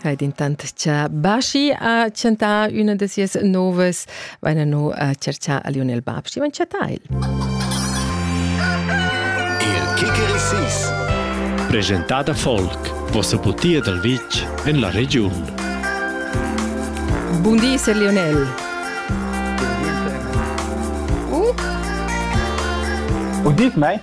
Hai intant cha Baschi ha chantà üna da sias novas, vaina no a cerchar a Lionel Bab, schi van chattà el. Il Kikerisis Presentat a folk, vossa putia dal vitg en la regiun. Bun di, Sir Lionel. Uh? Und dies, mei?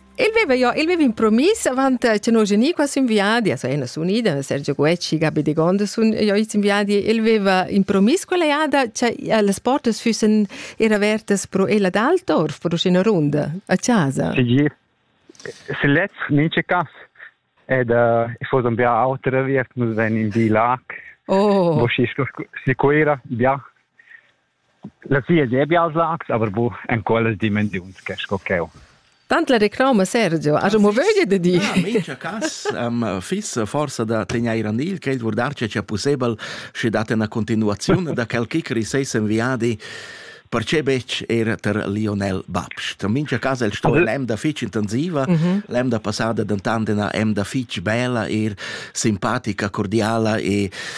El veva jo, el veva impromis avant eh, che noi geni qua sin viadi, also ena sun ida, Sergio Guecci, Gabi de Gonda sun jo its in viadi, el veva impromis quella jada che eh, las portas fussen era avertas pro ella d'Altorf, pro scena runda, a casa. Sì, se letz ninche cas. Ed uh, eh, fosse un bia autre viet, nus ven in di lac. Oh. Bo si si quera, bia. La sia debia als lags, aber bu en quellas dimensiuns che sco cheu. Tant la reclama Sergio ha mo vöglia da dir. Ja, mincha cas um, fiss forsa da tegnair an il cred vurdar che c'è possibel sche dat una continuazione da quel kick riseis en viadi perché bec er ter Lionel Babst. In mincha cas el sto l'emda fitch intensiva, mm -hmm. l'emda passada dentant ena emda fitch bella er simpatica, cordiala e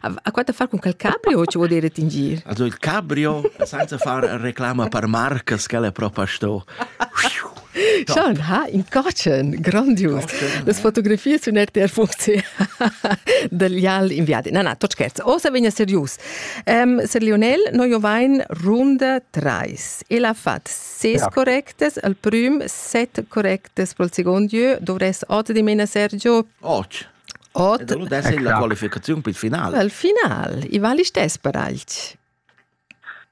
Ha quatta far con quel cabrio, ci vuol dire tingir? Also il cabrio, senza far reclama per marcas, che è proprio sto. Schon, ha in cocen, grandius. Las fotografies sun RTR Funzi dagli all inviati. Na, na, tot scherz. O se vegna serius. Um, Sir Lionel, noi jo vain runda trais. El ha fat ses ja. correctes, al prüm set correctes pro il secondo lieu. Dovress ote di mena Sergio? Och. Ot. E da lu dess la qualificaziun pil final. Il final, i vali stess per alch.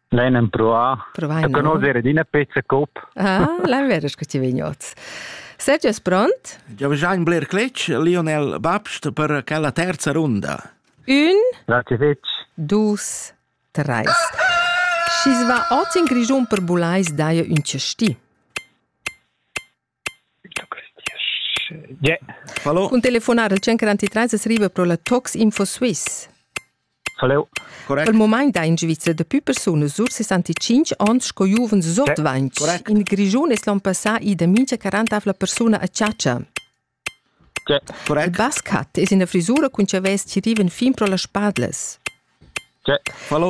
L'ein empruà a conoscere d'ina pezza cop. Ah, l'hai vero che ti vegnots. Sergio è pronto? Già già in Blair Cletch, Lionel Babst per quella terza runda. Un, Grazie fetch. dus, tre. Schi va ot in Grigiun per bulais daia un cesti. Cun telefonar al 133 es riva pro la Toxinfo Suisse. Hello. Correct. Il moment da in Svizra daplü persunas sur 65 ans sco giuvens sot 20. Correct. In Grischun es l'on passà ida mincha 40 avla persuna a chatscha. Correct. Il Bascat es ina frisura cun chavès chi rivan fin pro las spadlas.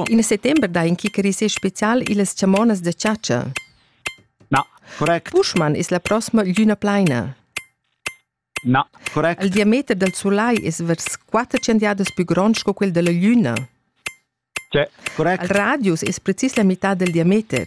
Il settember dà in kickerisser spezial illas chamonas da chatscha. Na, correct. Buschmann es la prossima glüna plaina. Na, correct. Il diameter dal sulai es vers quatter chandiadas pü grond sco quel dalla glüna. C'è, correct. Il radius es precis la mità dal diameter.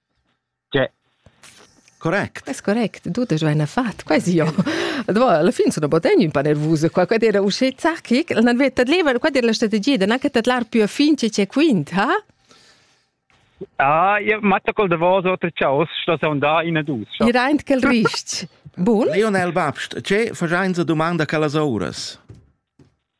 Cioè, correct. Quest correct, tut es vaina fat, quai si jo. Alla fin sono botegni un po' nervose qua, quad era uscì zacchic, l'han vetta leva, quad era la strategia, da anche tadlar più a fin che c'è quint, ha? Ah, io matta col davos otra ciaus, sto son da in a dus. I raint quel rist. Bun? Lionel Babst, ce fagiainsa domanda che las ouras?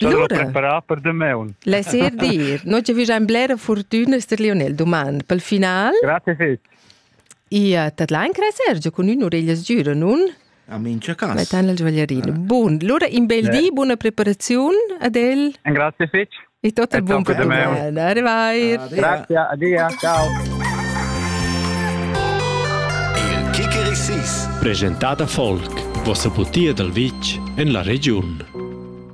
L'ora preparar per demaun. Laissez dire. Noi ci figiam blera fortuna ster Lionel domand pel final. Grazie fitch. Ia tadlain cre Sergio cun ün orellas giura, nun? A mincia cas. Metan il svaglierino. Bun, lura in bel di, buona preparaziun ad el. Grazie fitch. E tot il buon perdomen. Arrivai. Grazie, adia, ciao. Il Kikerisis. Presentata Folk, vossa butia dal vitg en la regiun.